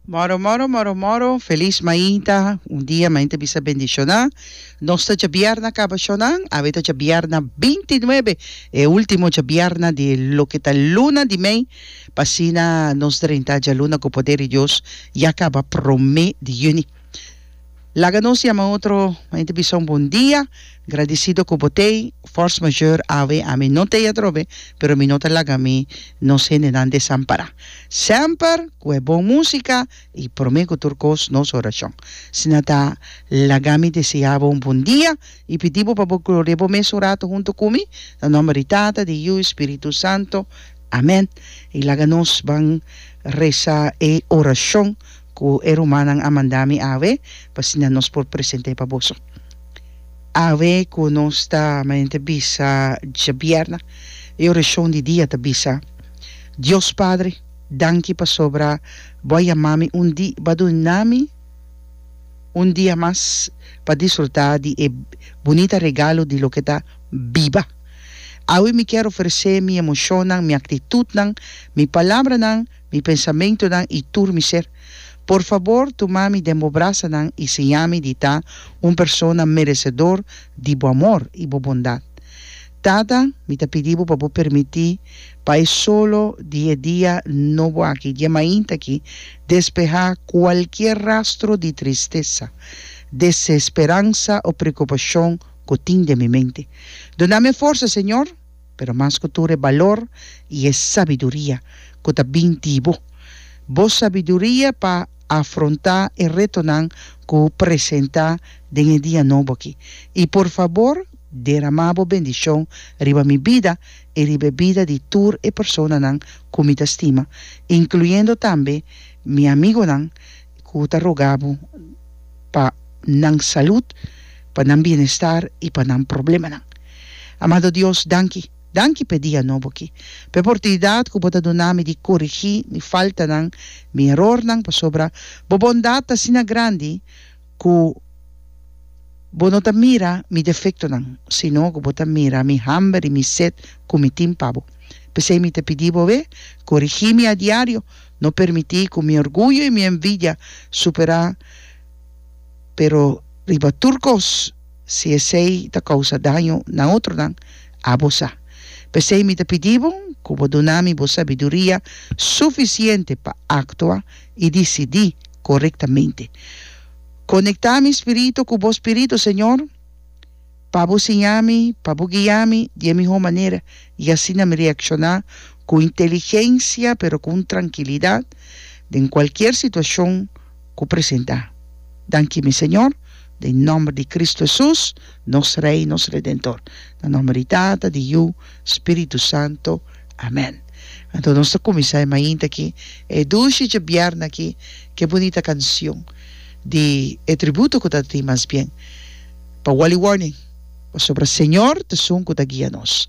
Moro moro moro moro felis mainta un dia mainta bisa bendishona nos ta chabiarna kaba shonan awe ta chabiarna binti nuebe e ultimo chabiarna di loke ta luna di mei pa asina nos drenta djaluna ku poder di Dios ya kaba prome di juni. Laga nos yama otro hende bisa un bon dia. Gradisido ku bo t'ei. Force majeure awe a mi no t'ei atrobe, pero mi no ta laga mi nos hendenan desampará. Semper ku e bon músika i promé ku tur kos nos orashon. Si nan ta laga mi deseá bo un bon dia i pidi bo pa bo glori'é bo mes un ratu huntu ku mi, na nòmber di Tata, di Yu i Spiritu Santu. Amèn. I laga nos ban resa e orashon. Ku e rumannan a manda mi awe, pa asina nos por present'é pa boso. Awe ku nos ta manente bisa djabièrna, e orashon di dia ta bisa, Dios Padre, danki pasobra Bo a yama mi un di, Bo a duna mi un dia mas pa disfrutá di e bunita regalo di loke ta biba. Awe mi kier oferesé mi emoshonnan, mi aktitutnan, mi palabranan, mi pensamentonan i tur mi ser. Por fabor tuma mi den bo brasanan i siña mi di ta un persona meresedor di bo amor i bo bondat. Tata, mi ta pidi bo pa bo permití pa e solo di e dia nobo aki, dje mainta aki, despehá kualkier rastro di tristesa, desesperansa o preokupashon ku tin den mi mente. Duna mi e forsa, Señor! Pero mas ku tur e balor i e sabiduria ku ta bin di bo. Bo sabiduria pa afrontá e retonan ku presentá den e dia nobo aki. I por fabor deramá bo bendishon riba mi bida i riba e bida di tur e personanan ku mi ta stima, inkluyendo tambe mi amigonan ku ta rogá bo pa nan salud, pa nan bienestar i pa nan problemanan. Amado Dios, danki. Danki p'e dia nobo aki, p'e portunidat ku Bo ta duna mi di korigí mi faltanan, mi erornan, pasobra Bo bondat ta asina grandi ku Bo no ta mira mi defektonan, sino ku Bo ta mira mi hamber i mi set ku mi tin pa Bo. P'esei mi ta pidi Bo awe, korigí mi a diario, no permití ku mi orguyo i mi envidia superá, pero riba tur kos, Si esei ta kousa daño na otronan, abo sa. P'esei mi ta pidi bo ku bo duna mi bo sabiduria sufisiente pa aktua i disidí korektamente. Konektá mi spiritu ku bo spiritu, Señor, pa bo siña mi, pa bo guia mi di e mihó manera, i asina mi reakshoná ku inteligensia pero ku un trankilidat den kualkier situashon ku presentá. Danki mi Señor, den nòmber di Kristu Hesus, nos Rei, nos Redentor. Na nòmber di Tata, di Yu, Spiritu Santu. Amèn. Anto nos ta kuminsá e mainta aki, e dushi djabièrna aki, ke bunita kanshon di e tributo ku ta tin mas bien pa Wally Warning, pasobra Señor t'esun ku ta guia nos.